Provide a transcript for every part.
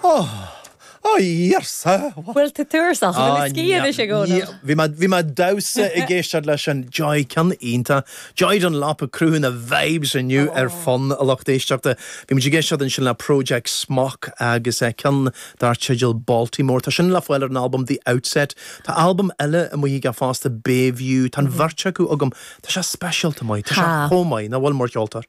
Oh! Oh Íarsa! What? Bhuel, tá turas acu, bhfuil na scíth anois ag Óna? Bhí mé, bhí mé damhsa ag éisteacht leis a Joy, ceann iontach. Joy Dunlop ag cruthú na vibes inniu ar son an lucht éisteachta. Bhí muid ag éisteacht ansin le Project Smok agus eh ceann dar teideal Baltimore. Tá sin le fáil ar an albam The Outset. Tá albam eile amuigh aige fosta Bayview. Tá an bheirt acu agam. Tá sé speisialta maith. Tá sé chomh maith. Nach bhfuil, mar cheoltóir?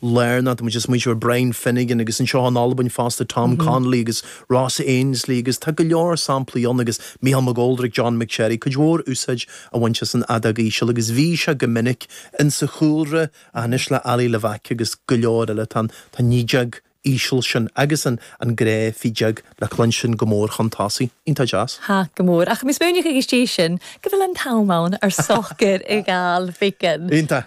Learn that muid ag smaointiú ar Brian Finnegan agus anseo in Albain fosta Tom Connelly agus Ross Ainslie agus tá go leor samplaí ann agus Michael McGoldrick, John McSherry, cuid mhór úsáid a bhaint as an fheadóg íseal agus bhí sé go minic insa chúlra ach anois le Ali Levack agus go leor eile tá an tá an fheadóg íseal sin agus an an gnáthfheadóg le cluinstin go mór chun tosaigh. Iontach deas. ha go mór ach mis muineach ag istigh sin go bhfuil an t-am ann ar socair i gal ficeann. Iontach.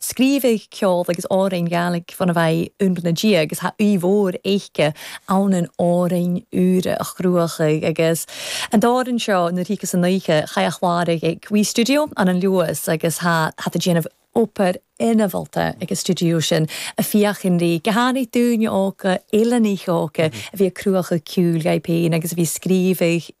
Scríobhadh ceol agus amhráin Ghaeilge fán bhfeidhm úr na diaidh agus tá aoi mhór éice ann in amhráin úra a chruachadh agus an t-amhrán seo, Nuair Thíocas an Oíche, chaith a chlár ag Wee Studio an an Luas agus tá tá déanamh obair ina mholta ag an stiúideo sin a féachann rí go hannamh dúinne óga, uile Ní Chróca, a bhí ag cruachadh ciúil gheibh féin agus a bhí scríobhadh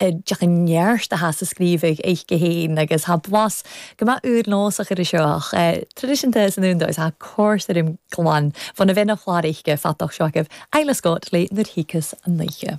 D'fhéadfadh an neart a theacht sa scríobhaí oiche féin agus tá blas go maith úr nós a chur isteach ach traidisiúnta san fhonn dóibh tá cor tirim glan fonna bheith ina chlár oiche feapach seo agaibh, Isla Scott le Nuair Thíocas an Oíche.